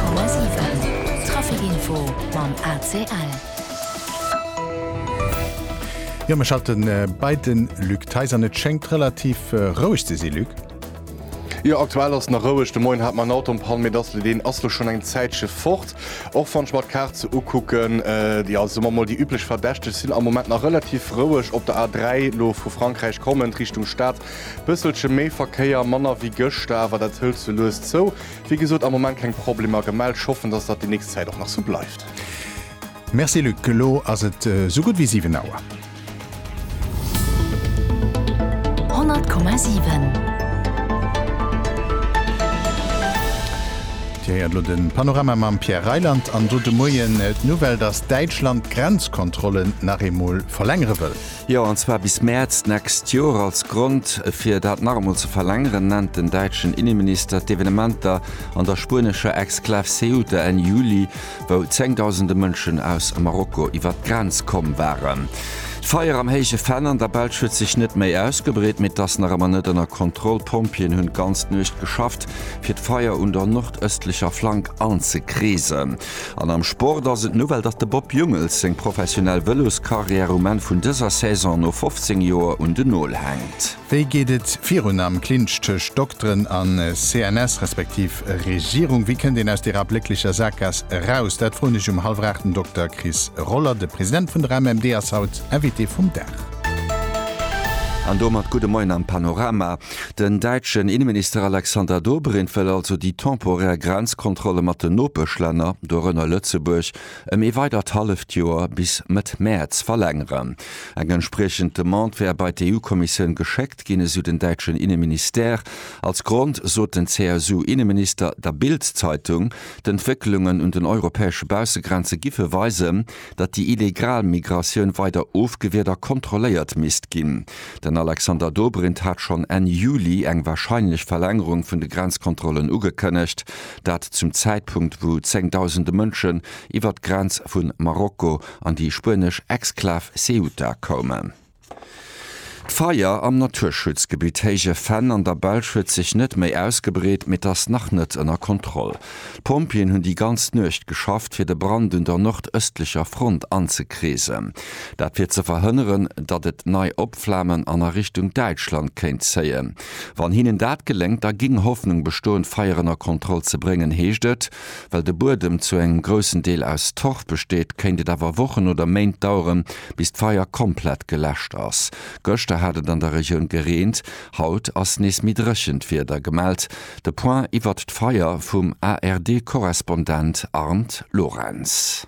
Komma 7 Trafic Info mam ACL. Jo, mir schalten bei de Luc Theis an. Et schéngt relativ roueg ze sinn, Luc? Jo, aktuell ass nach roueg. De Moien hat mer en Auto an Pann, mee dass elo deen ass elo schonn eng Zäitche fort. Och wann ech mer d'Kaart sou ukucken, jo, soe mer emol déi üblech Verdächteg sinn am Moment nach relativ roueg op der A 3 elo vu Frankräich kommend Richtung Stad. Bësselche méi Verkéier, manner wéi gëschter, awer dat hëlt sou lues zou. Wéi gesot am Moment keng Problemer gemellt. Ech hoffen, dass dat déi nächst Zäit och nach sou bleift. Merci Luc, elo ass et esou gutt wéi 7 Auer. 100,7. Dir héiert elo de Panorama mam Pierre Reyland an do de Moien d'Nouvelle, dass Däitschland d'Grenzkontrollen nach eemol verlängere wëll. Jo, an zwar bis Mäerz d'nächst Joer. Als Grond fir dat nach emol ze verlängeren, nennt den däitschen Inneminister d'Evenementer an der spuenescher Exklav Ceuta Enn Juli, wou zéngdausende Mënschen aus Marokko iwwer d'Grenz komm waren. D'Feier am Héije Venn an der Belsch huet sech net méi ausgebreet, mee et ass nach ëmmer net ënner Kontroll. D'Pompjeeën hunn d'ganz Nuecht geschafft, fir d'Feier un der nordëstlecher Flank anzekreesen. An am Sport ass et Nouvelle, datt de Bob Jungels seng professionell Vëloskarriär um Enn vun dëser Saison no 15 Joer un den Nol hänkt. Wéi geet et virun am Clinch tëscht Dokteren a CNS respektiv Regierung? Wéi kënnt een aus deerer ablécklecher Saakgaass eraus? Dat froen ech um hallwer 8 den Dokter Chris Roller. De President vun der MMD ass haut Invité vum Dag. An domat gudde Moien am Panorama. Den däitschen Inneminister Alexander Dobrindt wëll also déi temporär Grenzkontrolle mat den Nopeschlänner, dorënner Lëtzebuerg, ëm ee weidert halleft Joer, bis Mëtt Mäerz, verlängeren. Eng entspriechend Demande wär bei d'EU-Kommissioun geschéckt ginn, esou den däitschen Inneministère. Als Grond sot den CSU-Inneminister der Bild-Zeitung, d'Entwécklungen un den europäesche Baussegrenze giffe weisen, datt déi illegal Migratioun weider ofgewiert a kontrolléiert misst ginn. Den Alexander Dobrindt hat schonn Enn Juli eng warscheinlech Verlängerung vun de Grenzkontrollen ugekënnegt, dat zum Zäitpunkt wou zéngdausende Mënschen iwwer d'Grenz vu Marokko an déi spuenesch Exklav Ceuta koumen. D'Feier am Naturschutzgebitt Héije Venn an der Belsch huet sech net méi ausgebreet, mee et ass nach net ënner Kontroll. D'Pompjeeën hunn déi ganz Nuecht geschafft, fir de Brand un der nordëstlecher Front anzekreesen. Dat fir ze verhënneren, datt et nei opflamen an a Richtung Däitschland kéint zéien. Wann hinnen dat geléngt, da géing Hoffnung bestoen, d'Feier ënner Kontroll ze bréngen, heescht et. Well de Buedem zu engem groussen Deel aus Torf besteet, kéint et awer Wochen oder Méint daueren, bis d'Feier komplett geläscht ass. Gëschter hat et an der Regioun gereent, haut ass nees méi dréchent Wieder gemellt. De Point iwwert d'Feier vum ARD-Korrespondent Arndt Lorenz.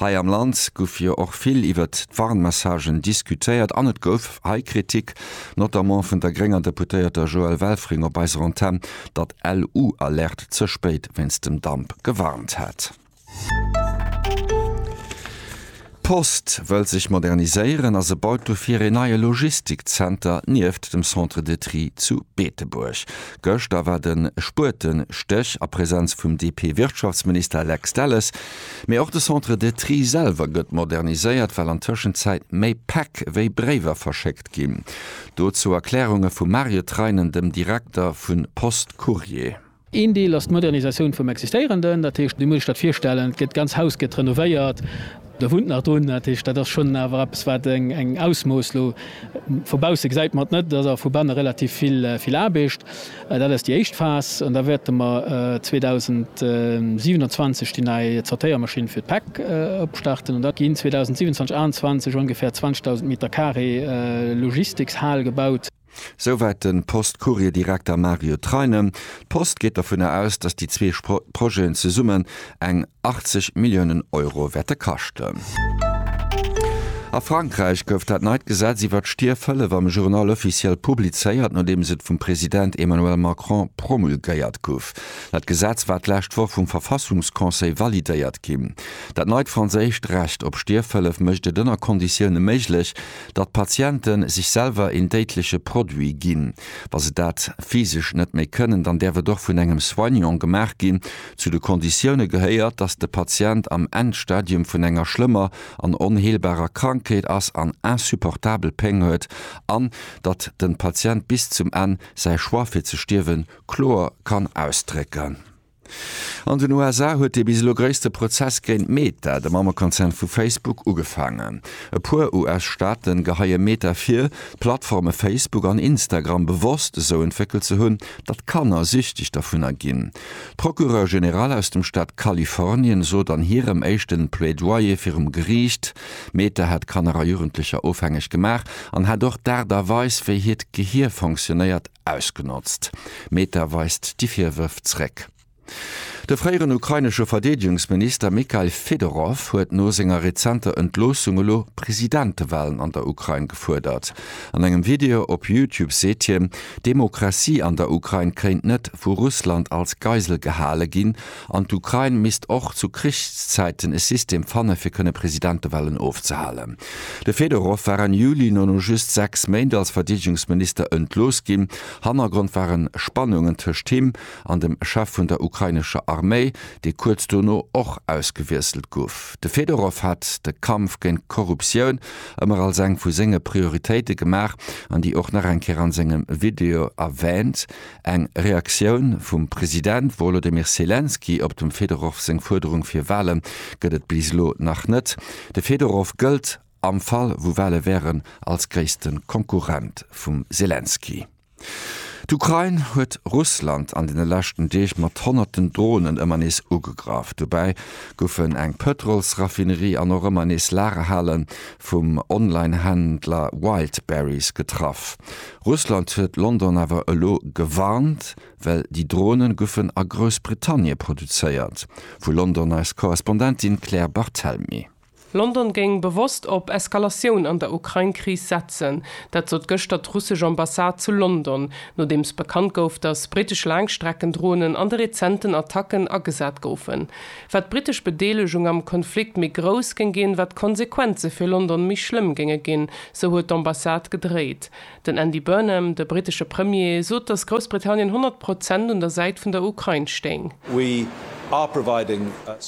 Hei am Land guff jo och vill iwwert d'Warnmessagen diskutéiert an et gouf hei Kritik, notamment vun der grénger Deputéierter Joëlle Welfring op eiser Antenn, datt LU Alerte ze spéit wéinst dem Damp gewarnt hätt. D'Post wëll sech moderniséieren a se baut dofir een neie Logistikzenter nieft dem Centre de Tri zu Beetebuerg. Gëschter war de Spuetestech a Presenz vum DP-Wirtschaftsminister Lex Delles, Mee och de Centre de Tri selwer gëtt moderniséiert, well an Tëschenzäit méi Päck wéi Bréiwer verschéckt ginn. Dozou Erklärunge vum Mario Treinen, dem Direkter vu Post Courrier. Een Deel ass d'Modernisatioun vum Existéierenden. Dat heescht, wéi muss ech dat virstellen? Gëtt d'ganz Haus gëtt renovéiert, do wunnt nach drun. Dat heescht, dat ass schonn awer eppes, wat eng Ausmooss. Elo vu bausse gesäit mer et net, et ass awer vu banne relativ vill Aarbecht. Dat ass déi éischt Phas an da wäerte mer 2027 déi nei Zortéiermaschinn fir d'Päck opstarten an da ginn 2027, 28 ongeféier 20.000 Meter Carré Logistikshal gebaut. Souwäit de Post-Courier-Direkter Mario Treinen. D'Post geet dovunner aus, datt déi zwee Projeten zesummen eng 80 Milliounen Euro wäerte kaschten. A Frankräich gouf dat neit Gesetz iwwer d'Stierfhëllef am Journal officiel publizéiert, nodeems et vum President Emmanuel Macron promulgéiert guff. Dat Gesetz war d'lescht Woch vum Verfassungsconseil validéiert ginn. Dat neit franséischt Recht op Stierfhëllef mécht et ënner Konditioune méiglech, datt Patiente sech selwer een déidleche Produit ginn. Wa se dat physesch net méi kënnen, dann däerf et och vun engem Soignant gemaach ginn, Zu de Konditioune gehéiert, datt de Patient am Endstadium vun enger schlëmmer an onheelbarer Krankheet ass an insupportabel Péng huet an datt de Patient bis zum Enn säi Choix fir ze stierwen kloer kann ausdrécken. An den USA huet dee bis elo gréisste Prozess géint Meta, de Mammekonzern vu Facebook, ugefaangen. E puer US-Staaten geheie Meta vir, d'Plattforme Facebook an Instagram bewosst esou entwéckelt ze hunn, datt Kanner süchteg dervunner ginn. D'Procureur General aus dem Staat Kalifornien sot an hirem éischten Plaidoyer virum Geriicht, Meta hätt Kanner a Jugendlecher ofhängeg gemaach an hätt och d'Aart a Weis, wéi hiert Gehier fonctionnéiert, ausgenotzt. Meta weist déi Virwërf zréck. De fréieren ukrainesche Verdeedegungsminister Mykhail Fedorov huet no senger rezenter Entloossung elo Presidentewalen an der Ukrain gefuerdert. An engem Video op Youtube seet hien, d'Demokratie an der Ukrain kéint net vu Russland als Geisel gehale ginn an d'Ukrain misst och zu Krichszäiten e System fanne fir kënne Presidentewahlen ofzehalen. De Fedorow war Enn Juli no no just 6 Méint als Verdeedegungsminister entlooss ginn. Hannergrond ware Spannungen tëscht him an dem Chef vun der ukrainescher Arméi, dee kuerz dono och ausgewiesselt gouf. De Fedorow hat de Kampf géint d'Korruptioun ëmmer als eng vu senge Prioritéite gemaach an déi och nach eng Kéier an sengem Video erwähnt, eng Reaktioun vum President Wolodymyr Selenskyj op dem Fedorov seng Fuerderung fir Wahlen gëtt et bis elo nach net. De Fedorov gëllt, am Fall wou Wahlen wären, als gréissten Konkurrent vum Selenskyj. D'Ukrain huet Russland an deene leschten Deeg mat honnerten Dronen ëmmer nees ugegraff. Dobäi goufen eng Pëtrolsraffinerie an och ëmmer nees Lagerhale vum Online-Händler Wildberries getraff. Russland huet London awer elo gewarnt, well déi Drone goufen a Groussbritannie produzéiert, vu London eis Korrespondentin Claire Barthelmy. London géing bewosst op Eskalatioun an der Ukrain-Kris setzen. Dat sot gëschter d'russesch Ambassade zu London, nodeems bekannt gouf, datt brittesch Laangstreckendronen an de rezenten Attacken agesat goufen. Wat d'brittesch Bedeelegung am Konflikt méi grouss géing ginn, wat d'Konsequenze fir London méi schlëmm géinge ginn, sou huet d'Ambassade gedréit. Den Andy Burnham, de brittesche Premier, sot, datt Groussbritannien 100 Prozent un der Säit vun der Ukrain stéing.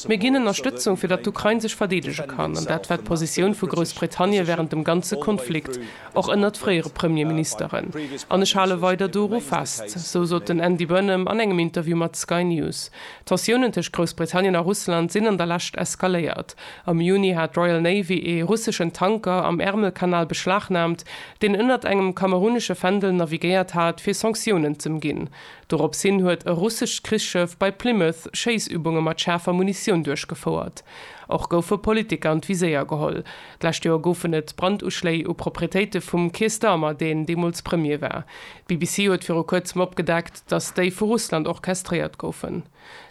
Mir ginn Ënnerstëtzung, fir datt d'Ukrain sech verdeedege kann. An dat war d'Positioun vu Groussbritannien wärend dem ganze Konflikt, och ënnert fréiere Premierministeren. An ech hale weider doru fest. Sou sot den Andy Burnham an engem Interview mat Sky News. D'Tensiounen tëscht Groussbritannien a Russland sinn an der Lescht eskaléiert. Am Juni hat d'Royal Navy ee russeschen Tanker am Ärmelkanal beschlagnaamt, deen ënnert engem kamerunesche Fändel navigéiert hat, fir Sanktiounen z'ëmginn. Dorops hin huet e russescht Krichsschëff bei Plymouth Schéissübunge mat schaarfer Munitioun duerchgefouert. Och goufe Politiker an d'Viséier geholl. D'lescht Joer goufen et Branduschléi u Proprietéite vum Keir Starmer, deen deemools Premier war. D'BBC huet viru kuerzem opgedeckt, datt déi vu Russland orchestréiert goufen.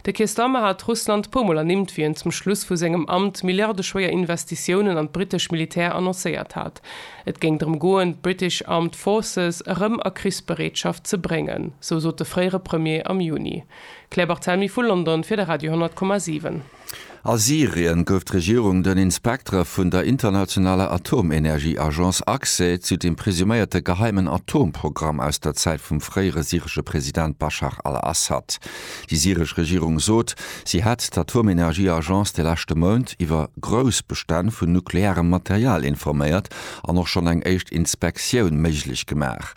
De Keir Starmer hat Russland puer Mol ernimmt, wéi en zum Schluss vu sengem Amt milliardeschwéier Investitiounen an d'brittesch Militär annoncéiert hat. Et géing drëm goen, d'British Armed Forces erëm a Krichsbereetschaft ze bréngen, sou sot de fréiere Premier am Juni. Claire Barthelmy vu London fir de Radio 10,7. A Syrien gouf d'Regierung den Inspektere vun der internationaler Atomenergieagence Accès zu dem presuméierte geheimen Atomprogramm aus der Zäit vum fréiere syresche President Baschar al-Assad. Déi syresch Regierung sot, si hätt d'Atomenergieagence de leschte Mount iwwer grouss Bestänn vun nuklearem Material informéiert an och schonn eng éischt Inspektioun méiglech gemaach.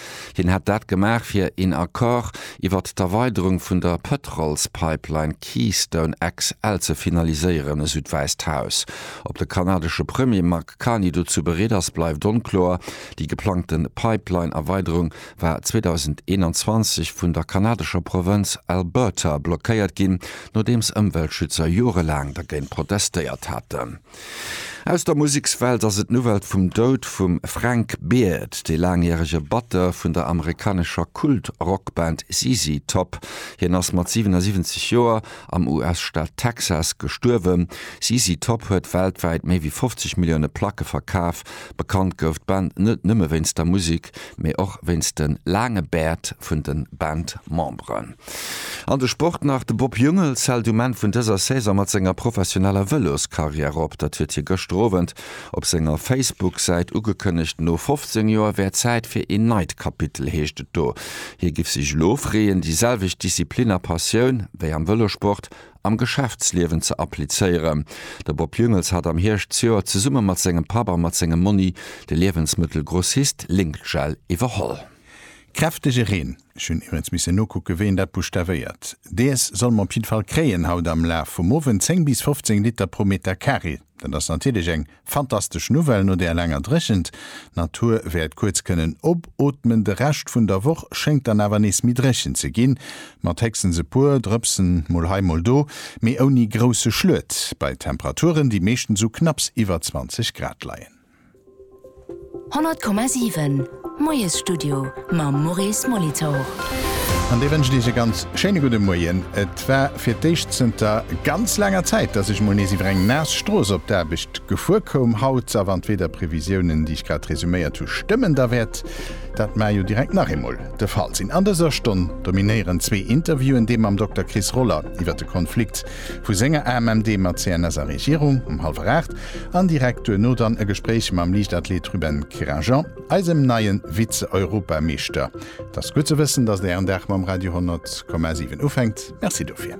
Hien hätt dat gemaach, fir een Accord iwwert d'Erweiderung vun der Pëtrolspipeline Keystone XL ze finaliséieren, esou d'Wäisst Haus. Ob de kanadesche Premier Mark Carney dozou bereet ass, bleift onkloer. Déi geplangte Pipeline-Erweiderung war 2021 vun der kanadescher Provënz Alberta blockéiert ginn, nodeems Ëmweltschützer jorelaang dergéint protestéiert haten. Aus der Musekswelt ass et d'Nouvelle vum Doud vum Frank Beard, dee laangjärege Batteur vun der amerikanescher Kult-Rockband ZZ Top. Hien ass mat 77 Joer am US-Staat Texas gestuerwen. ZZ Top huet weltwäit méi wéi 50 Millioune Placke verkaf. Bekannt gouf d'Band net nëmme wéinst der Musek, mee och wéinst de laange Bäert vun de Bandmemberen. An de Sport nach, De Bob Jungels hält um Enn vun dëser Saison mat senger professioneller Vëloskarriär op. Dat huet hie gëschter Owend op senger Facebook-Säit ugekënnegt. No 15 Joer wär Zäit fir een neit Kapitel, heescht et do. Hie géif sech elo freeën, déi selwecht Disziplin a Passioun wéi am Vëlossport am Geschäftsliewen ze applizéieren. De Bob Jungels hat am Hierscht zejoert zesumme mat sengem Papp a mat sengem Monni de Liewensmëttelgrossist Link-Gel iwwerholl. Kräftege Reen Ech hunn iwwrens missen nokucken, wéi een dat buschtavéiert. Dees soll mer op jidde Fall kréien haut am Laf vum Owend. 10 bis 15 Liter pro Meter Carré, dat ass natierlech eng fantastesch Nouvelle no där laanger Dréchent. D'Natur wäert kuerz kënnen opootmen. De Rescht vun der Woch schéngt dann awer nees méi dréchen ze ginn, mat héchstens e puer Drëpsen mol hei mol do, mee ouni grousse Schluet, bei Temperaturen, déi meeschtens u knapps iwwer 20 Grad leien. 100,7 Moiesstudio mam Maurice Molitor. An dee wënscht Iech e ganz schéine gudde Moien. Et war fir d'éischt zënter ganz laanger Zäit, dass ech mol nees iwwer eng naass Strooss op d'Aarbecht gefuer koum. Haut, a wann d'Wiederprevisiounen, déi ech grad resuméiert hu, stëmmen, da wäert dat mar jo direkt nach eemol de Fall sinn. An dëser Stonn dominéieren zwee Interviewen, dee mam Dokter Chris Roller iwwer de Konflikt vu senger AMMD mat CNS a Regierung um hallwer aacht An direkt duerno dann e Gespréich mam Liichtathlet Ruben Kerajan, eisem neie Vize-Europameeschter. Et ass gutt ze wëssen, datt Ären Dag mam Radio 10,7 ufänkt. Merci dofir.